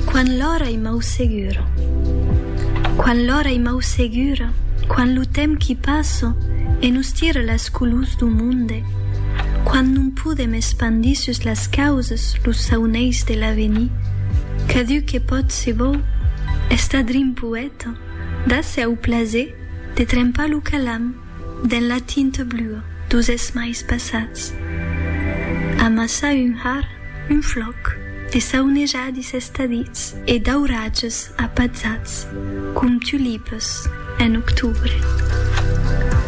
Quan l'ora i mau segura Quan l'ora i mau segura Quan lo temps qui passa e nos tira las colors du monde Quan non podem espandir sus las causas los sauneis de l'avenir Cadun que pòt se vòu estar drin poèta Dase au plaser de trempar lo calam Dens la tinta blua dos esmais passats. Amassa un har, un flòc, de saunejadis estadits e d'auratges apatzats com tulipas en octubre.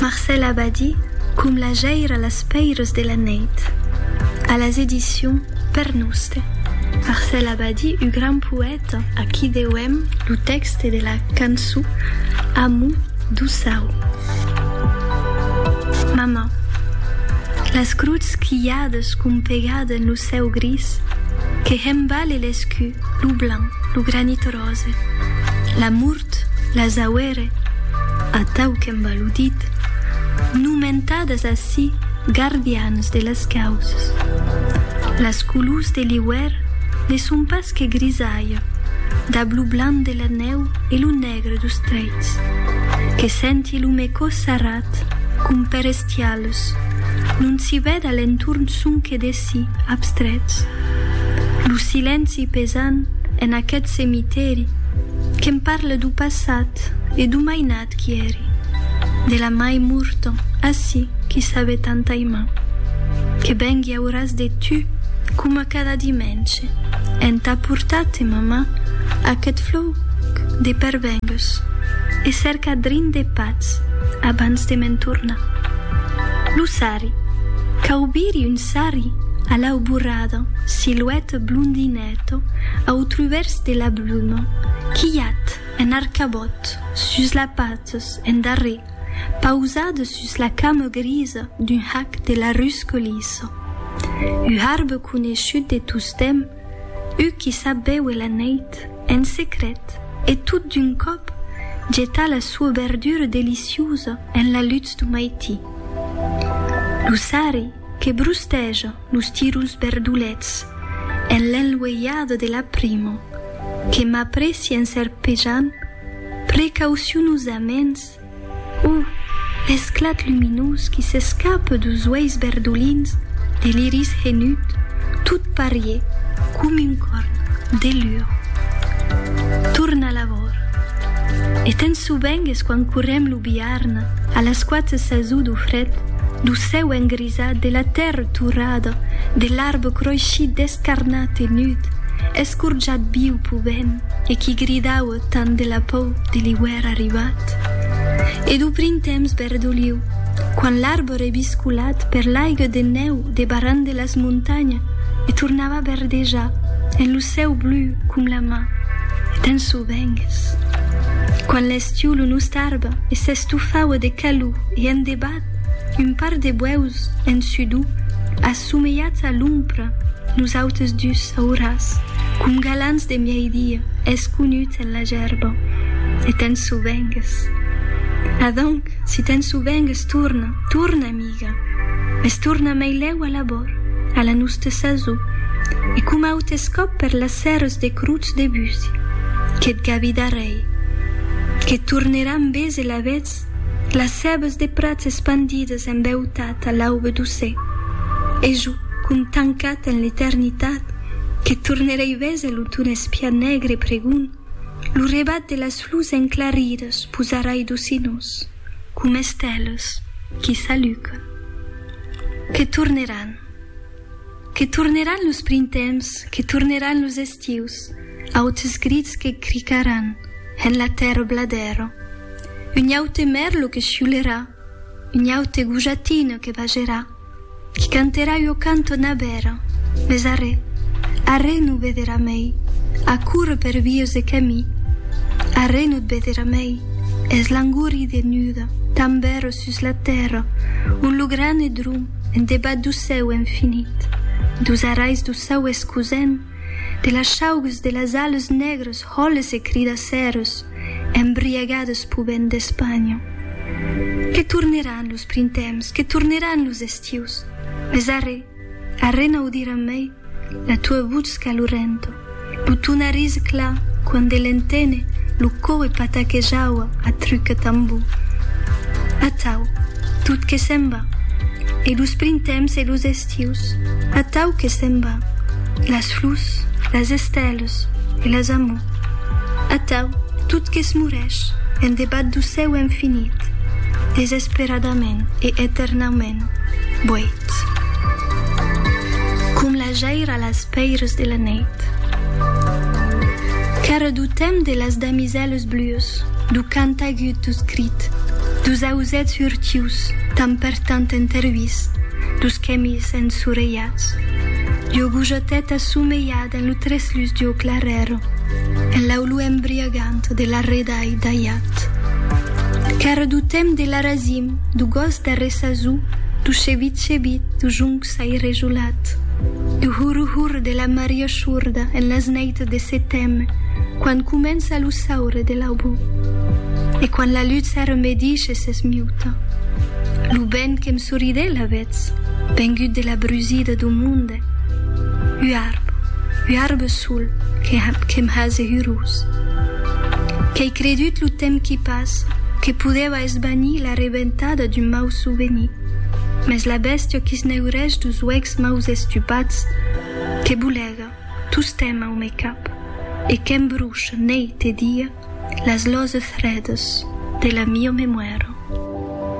Marcèl Abadí com la jaira las pèiras de la nèit. A las edicions Per Noste. Marcèl Abadí, ua gran poèta. Aquí deuem lo tèxte de la canço Amu doçau. Mama, las gruts quilhades compegade en lo cèu gris que hembale l'escu, lo blanc, lo granit rose, l'amor Tot las auere, atau qu'en baludit, nomentadas ací gardians de las causas. Las colors de l'iuèr ne son pas que grisalha, dab lo blanc de la nèu e lo negre dos trèits, que senti lo mecò sarrat com per estialas, non s'i vèd a l'entorn sonque de. Silènci abstrèts. Lo silènci pesant en aqueth cemitèri que'm parle d'o passat e d'o mainat qui èri, de la mai morta ací qui sabe tant aimar. Que vengui auras de tu coma cada dimènche entà portar-te, mamà, aqueth flòc de pervengues e cercar drin de patz abans de me'n tornar. Lo sarre. Cau biri un sarri a l'auborada, silueta blondineta au truvèrs de la bluma, quilhat en arcabòt sus la patas en darrer, pausada sus la cama grisa d'un hac de la rusca lisa. U harbe coneishut de tostemp, u qui sap béuer la neit en secret e tot d'un còp getar la soa berdura deliciusa en la lutz du maití. Lo sarri que brusteja los tiruls berdolets en l'enlueiada de la prima que m'aprèci en serpejant precaucionosaments o l'esclat luminós qui s'escapa deus uèis berdolins de l'iris henut tot parier com un corn de lur torna la vora e tens sobengues quan correm lo biarn A las quatre sasons do fred, do cèu engrisat, de la tèrra torrada, de l'arbre croishit descarnat e nud, escorjat viu pau vent e qui gridaue tant de la pau de l'iuèr arribat, e do printemps verdoliu, quand l'arbre ebiscolat per l'aigue de nèu debarrant de las montanhas e tornava verdejar en lo cèu blu com la man d'un Vengues. Quan l'estiu lo nust arbre s'estofaue de calor e en debat, un par de buèus en sudor, assomeiats a l'ompra, nosautes dus auras, com galants de miei-dia, esconuts en la gerba. E te'n sovengues. Adonc, si te'n sovengues, torna, torna a mi. amiga, mès torna mai lèu a l'abòrd, a la noste sasor, e coma autes còp per las sèrres de Crotz Debussy, qu'eth gavi d'arrèir, que torneràn bés elavetz las cèbes de prats espandides en beutat a l'aube doce, e jo, com tancat en l'eternitat, que tornerèi bés a l'auton espiat negre e pregond, lo rebat de las flors enclaridas posarai docinós. com esteles qui s'alucan, que torneràn, que torneràn los printemps, que torneràn los estius, autes grits que cricaràn en la tèrra bladèra, un aute mèrlo que chiulerà, un aute gojatina que bagerà. Qui canterà ua cantona bèra, mes arrè, arrè no vederà mei, a córrer per vius de camí, arrè no 't vederà mei, es langori de nuda, tan bèra sus la tèrra, ont lo gran e drum, en debat dau cèu infinit, daus arais dau saues cosent, De las chaugues de las ales negres hòles e cridacèros embriagades p'u vent d'Espanha. Que torneràn los printemps, que torneràn los estius, mes arrè, arrè n'audiram mai la tua votz calorenta, lo ton arís clar quand de l'entene lo coe pataquejava a truc e tambor. Atau, tot que se'n va, e los printemps e los estius. Tius, atau que se'n va, las flus, las esteles e las amor, atau tot que's morèsh en debat do cèu infinit, desesperadament e eternaument, boit, com la jaira las pèires de la nèit. Qu'ara do temps de las damisèles blues, do cant agut, do crit, dos ausèths hurtius, tan tant entervist, dus quèmis ensorelhats, d'ua gojateta somelhada en lo treslus d'ua clarèra, en l'aulor embriagant de l'arredai d'aiat. Qu'èra d'o temps de l'arasim, d'o gòst d'arressazur, d'o chevit-chevit, d'o jonc sairejolat, d'o hurr-hurr de la maria shorda en las nèits de seteme, quan comença lo saure de l'aubor. E quan la lutz era medisha, Que s'esmiuta. Lo vent que'm soridè lavetz, vengut de la brusida do monde. Ua arba, ua arba sol que que'm hase hurós. Qu'ei credut lo temps qui passa que podèva esvanir la reventada d'un mau souvenir, mès la bèstia qui s'neurèsh dos uèchs maus estupats que bolega tostemp au me cap e que'm brucha neit e dia, Las loses fredas de la mio memoira.